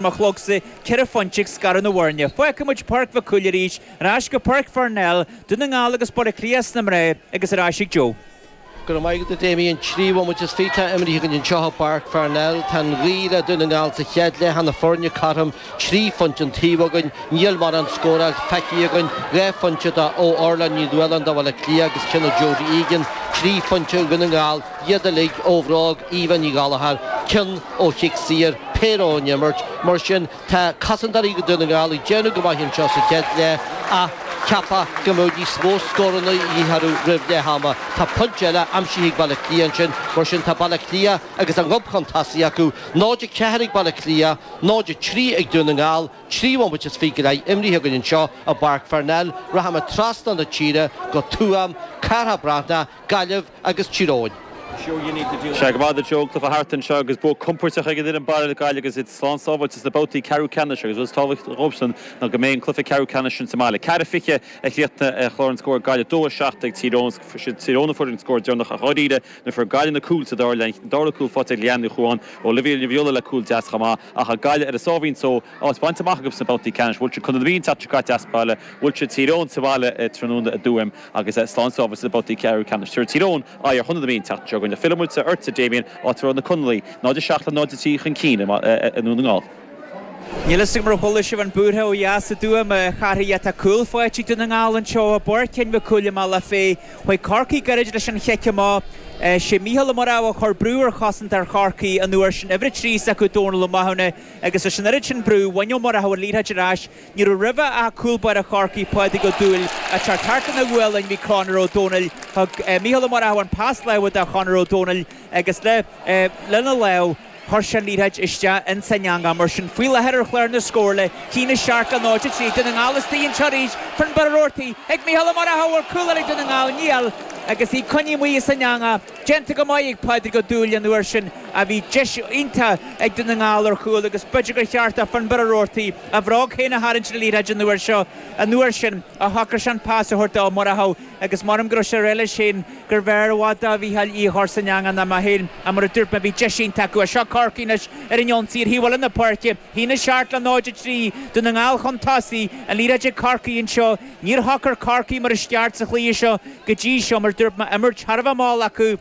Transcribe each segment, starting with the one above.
mo chlogsa ceithre phointe ag scaradh na bhfoirne. Fágfaidh muid Páirc Mhic Cumhaill arís, ar ais go Páirc Pharnell, Dún na nGall agus Baile Átha Cliath sna mná agus ar ais ag Joe. Go raibh maith agat, a Damien. An trí bhomaite is fiche atá imrithe againn anseo i bPáirc Pharnell, tá an ghaoth le Dún na nGall sa chéad leath, na foirne cothrom, trí phointe an taobh againn. Níl mórán scóráil feicthe againn, dhá phointe do ó Orla Ní Nualláin do Bhaile Átha Cliath agus cionn do Jodie Egan, trí phointe Dhún na nGall. iad uilig, ó bhróig Eva Ní Ghallachair, cionn ó chic saor, péire ón imirt, mar sin tá cosantóirí Dhún na nGall ag déanamh go maith anseo sa chéad leath ach cheapfá go mbeadh níos mó scóranna a dhíth orthu roimh leath ama. Tá pointe eile aimsithe ag Baile Átha Cliath ansin, mar sin tá Baile Átha Cliath agus a ngob chun tosaigh acu, 0-4 ag Baile Átha Cliath, 0-3 ag Dún na nGall, trí bhomaite is fiche go leith imrithe againn anseo i bPáirc Pharnell, rachaimid trasna na tíre go Tuaim, Cárthach Breathnach, Gaillimh, agus Tír Eoghain. Sea, go raibh maith agat, a Joe, cluiche thart anseo agus bua compóirteach ag an fhoireann baile, Gaillimh agus iad slán sábháilte sna babhtaí ceathrú ceannais agus rud is tábhachtaí dhóibhsan ná go mbeidh an cluiche ceathrú ceannais sin sa mbaile. 4-20 a chríochnaigh clár na scór, Gaillimh, 2-7 ag Tír Eoghain. Is iad Tír Eoghain a fuair an scór deireanach ach dháiríre nuair fuair Gaillimh na cúil sa dara leath, an dara cúl faighte ag Leanne Ní Chadhain, Olivia Ní Dhuibhghiolla le cúl deas chomh maith ach tá Gaillimh ar a sáimhín só áit bainte amach acu sna babhtaí ceannais. Bhuail siad Contae na Mí an tseachtain seo caite as baile, bhuail siad Tír Eoghain sa bhaile tráthnóna i dTuaim. Agus slán sábháilte sna babhtaí ceathrú ceannais. Tabharfaidh Tír Eoghain aghaidh ar Chontae na Mí an tseachtain seo chugainn. Fillfidh muid ortsa, a Dhamien, áit a raibh na Conallaigh 0 7 le 0 3 chun cinn i nDún na nGall. Níl fhios agam ar chuala sibh an búirtheach ó dheas i dTuaim, a Chárthaigh, ach tá cúl faighte ag Dún na nGall anseo i bPáirc Sheáin Mhic Cumhaill i mBealach Féich. Chuaigh Corcaigh gairid leis an chic amach. Sé Mícheál Ó Murchadha a chuir brú ar chosantóir Chorcaí an uair sin, uimhir 3 s'acu Dónal Ó Mathúna, agus leis an oiread sin brú, bhain Ó Murchadha an liathróid ar ais. Ní raibh roimhe ach cúl báire Chorcaí, Pádraig Ó Dúill, ach thart ina ghualainn bhí Conor Ó Domhnaill. Thug Micheál Ó Murchadha an pas láimhe do Chonor Ó Domhnaill agus le lena lámh chuir sé an liathróid isteach ins an eangach. Mar sin, faoi láthair ar chlár na scór, 1-7 le 0-3 Dún na nGall istigh anseo arís, Finbarr Roarty ag Micheál Ó Murchadha, bhfuil cúl eile do Dhún na nGall? Níl, agus í coinnithe amuigh as an eangach. Déanta go maith ag Pádraig Ó Dúill an uair sin, a bhí deis iontach ag Dún na nGall ar chúl agus b'fhéidir gur cheart do Finbarr Roarty a bhróg féin a tharraingt ar an liathróid an uair seo. An uair sin ach shocraigh sé an pas a thabhairt do Ó Murchadha agus maram go raibh sé ag rá leis féin gurbh fhearr i bhfad do Mhícheál í a chur san eangach ná mé féin. Ach mar a dúirt mé bhí deis iontach acu. Seo Corcaigh anois ar an ionsaí ar thaobh eile na páirce. 1-7 le 0-3 Dún na nGall chun tosaigh. An liathróid ag Corcaigh anseo. Níor shocair Corcaigh mar is ceart sa chluiche seo go dtí seo mar dúirt mé imirt thar a bheith mall acu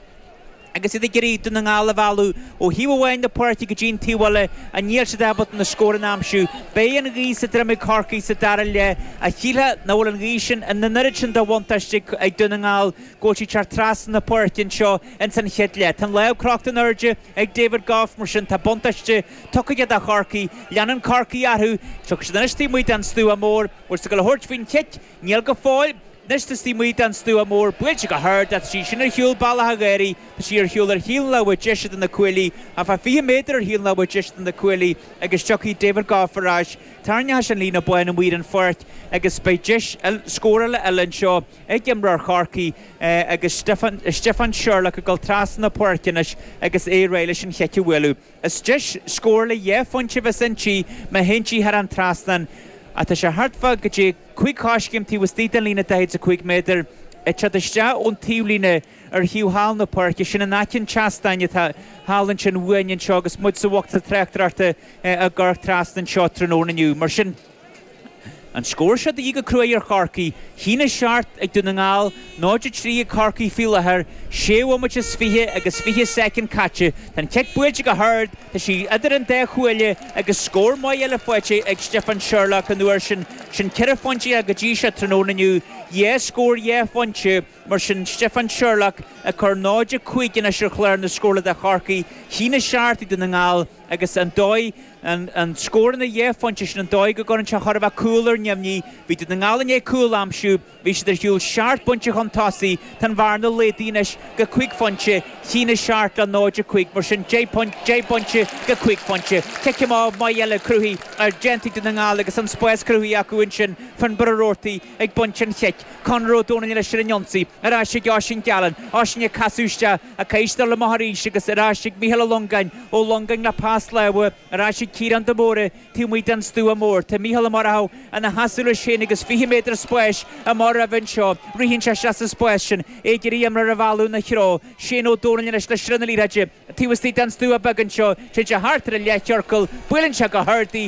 agus iad ag iarraidh Dún na nGall a mhealladh ó thaobh amháin na páirce go dtí an taobh eile ach níl siad ábalta na scóranna a aimsiú. Beidh an ghaoth sa droim ag Corcaigh sa dara leath ach shílfeá nach bhfuil an ghaoth sin ina an oiread sin de bhuntáiste ag Dún na nGall go bhfuil sí ag teacht trasna na páirce anseo ins an chéad leath. Tá an lámh crochta in airde ag David Gough mar sin tá buntáiste tugtha do Chorcaigh. Leanann Corcaigh orthu. Tiocfaidh siad anois taobh amuigh den stua mór. Bhfuil sé ag dul a thabhairt faoin chic. Níl go fóill. Anois tá sí amuigh den stua mór, buailte go hard, ach tá sí sin ar shiúl bealach a dh'éirí. Tá sí ar shiúl ar thaobh an láimhe deise de na cuaillí, thart fá fiche méadar ar thaobh an láimhe deise de na cuaillí, agus tiocfaidh David Gough ar ais, tarraingeoidh sé an líne bhán amuigh ar an pháirc, agus beidh deis scórála eile anseo ag imreoir Chorcaí agus Stiofán Sherlock ag dul trasna na páirce anois agus é réidh leis an chic a bhualadh. Is deis scórála dhá phointe a bheas inti má théann sí thar an trasnán ach tá sé thart fá go dtí cúig choiscéim taobh istigh den líne 45 méadar, ag teacht isteach ón taobhlíne ar thaobh thall na páirce. Sin in aice an tseastáin atá thall ansin uainn anseo agus muid sa bhocsa tráchtaireachta ag amharc trasna anseo tráthnóna inniu. Mar sin. An scór seo de dhíth go cruaidh ar Chorcaigh. 1-7 ag Dún na nGall, 0-3 ag Corcaigh faoi láthair. Séú bhomaite is fiche agus fiche soicind caite. Tá an cic buailte go hard. Tá sí idir an dá chuaille agus scór maith eile faighte ag Stiofán Sherlock an uair sin. Sin ceithre phointe aige go dtí seo tráthnóna inniu. Dhá scór dhá phointe mar sin Stiofán Sherlock ag cur 0-5 anois ar chlár na scórála do Chorcaigh. 1-7 ag Dún na nGall. agus an dóigh, na scóranna dhá phointe sin, an dóigh go gcuireann sé chóir a bheith cúl ar neamhní. Bhí Dún na nGall i ndiaidh cúl a aimsiú, bhí siad ar shiúl seacht bpointe chun tosaigh, tá an bhearna laghdaithe anois go cúig phointe, 1-7 le 0-5, mar sin deich bpointe go cúig phointe. Cic amach maith eile cruthaithe ar déanta ag Dún na nGall agus an spás cruthaithe acu ansin, Finbarr Roarty ag baint an chic, Conor Ó Domhnaill anois ar an ionsaí, ar ais ag Oisín Gallen, Oisín ag casadh isteach, Ag casadh amach arís agus ar ais ag Mícheál Ó Longáin, Ó Longáin le pas láimhe ar ais ag Ciarán de Mórdha taobh amuigh den stua mór. Tá Mícheál Ó Murchadha ina sheasamh leis féin agus 20 méadar spáis amach roimhe anseo. Ritheann sé isteach sa spás sin, é ag iarraidh imreoir a mhealladh ina threo. Shane Ó Dónaill anois le sruth na liathróide. Taobh istigh den stua beag anseo, téann sé thart ar an leathchiorcal, buaileann sé go hard í,